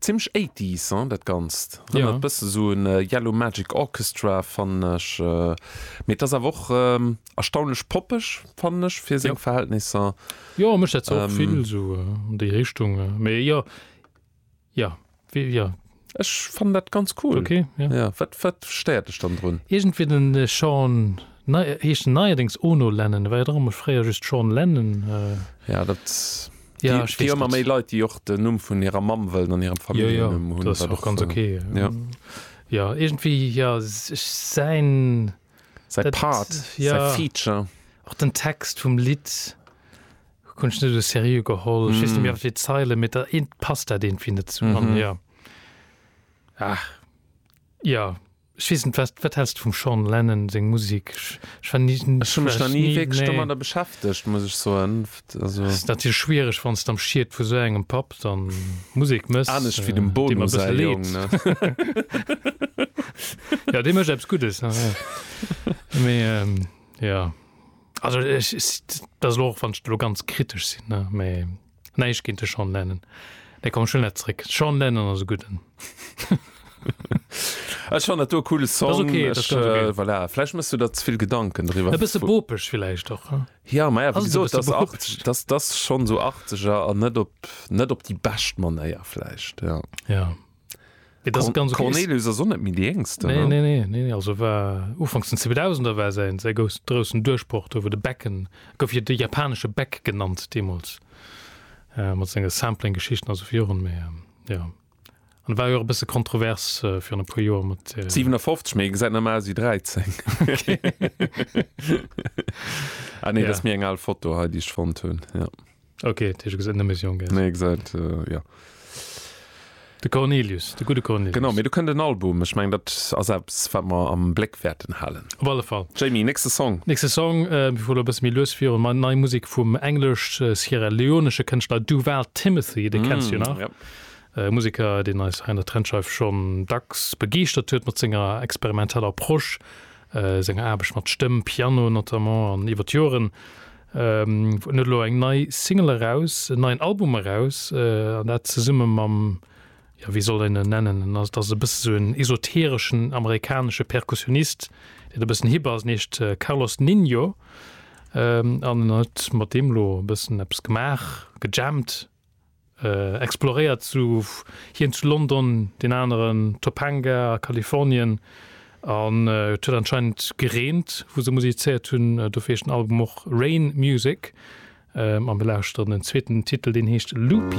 Zimlech 80s hein dat ganzt, rennert bëssen esou un Yellow Magic Orchestra fannen ech, mee et ass awer och erstaunlech poppeg fannen ech fir seng Verhältnisser. Jo mech dat och vill esou an déi Richtung, mee jo jo wéi jo. Ech fannen dat ganz cool. Ok jo. Wat wat stéiert dech dann drun? Iergendwéi den Sean, heescht en neierdéngs Ono Lennon, war jo och mol fréier just Sean Lennon. Jo dat. Ja, ech weess net. Leit déi och den Numm vun hirer Mamm wëllen an hirem Familljennumm hunn. Ass och ganz ok. Jo iergendwéi jo ech säin. Säi Part, säi Feature. Och den Text vum Lidd hunn ech net esou seriö geholl. Ech weess net méi wéivill Zeilen, mee da passt dat iergendwéi net zesummen. Jo. Ech weess net, wat häls de vum Sean Lennon seng Musek? Ech war ni, Ech hu mech nach ni wierklech nee. domadder beschäftegt, muss ech soen. Also. Ass natierlech schwiereg, wann s de am Schiet vu sou engem Papp dann Musek mëss. Anescht wéi dem Bono säi Jong, ne? Jo, dee mécht eppes Guddes, ja, ja. Mee ähm, jo. Also ech, dat ass elo och, wann ech elo ganz kritesch sinn, ne, mee. Nei ech géint de Sean Lennon. Nee komm ech huelen dat zréck. Sean Lennon ass e gudden. Ech fannen dat do e coole Song. Dat ass okay, dat ass ganz okay. Ech, äh, voilà, vläicht mëss du der ze vill Gedanken driwwer. E bësse bopeg villäicht och, hm? Ja, ma ja, Ass wéi et e gesot, bësse dass 80 bopeg? dass dass schonn esou 80er an net op net op déi bescht Manéier vläicht, ja. Ja. Et ass ganz okay. Cornelius ass och net méi déi Jéngsten, Nee, ne? nee, nee, nee, also war ufanks den 2000er war säin, säi gous, groussen Duerchbroch do, wou de Becken, e gouf jo de japanesche Beck genannt deemools, äh, mat senge Sampling-Geschichten, also fir Joren, mä jo. An war jo och e bësse kontrovers äh, virun e puer Joer mat. Äh, 57, mee e gesäit nach méi aus ewéi 13. Ah nee, dat ass Ja. méi eng al Foto hei, déi ech fonnt hunn. Ja. Okay, das ist eine Mission, gell? Nee, gesagt, äh, ja. De Cornelius, de gute Cornelius. Genau, mir du kënnt den Album. Ech meng dat a selbst wat mer am Bléck wäerten halen. Op alle Fall. Jamie, nächste Song. Nächste Song äh, vu der bësse méi lues virun mat nei Musik vum englesch äh, Sierra Leonesche Kënschtler Duval Timothy, de mm, kennst du nach. Ja. Äh, Musiker, den eis an der Trendscheif schon dacks begeeschtert huet mat senger experimenteller Prosch, äh, senger Aarbecht mat Stëmm, Piano notamment an iwwer d'Joren. En huet elo eng nei Single eraus, en neien Album eraus, an dat zesumme mam, jo wéi soll een en nennen, en ass, et ass e bësse sou en esotereschen amerikanesche Perkussionist, deen e bëssen hip ass, en heescht Carlos Ninho an en huet mat deem elo e bëssen eppes gemaach, gejammt. exploréiert zu hien zu London, deen aneren Topanga a Kalifornien an et huet anscheinend gereent wou se musizéiert hunn, dofir heescht den Album och Rain Music a mir lauschteren den zweeten Titel deen heescht Loopy.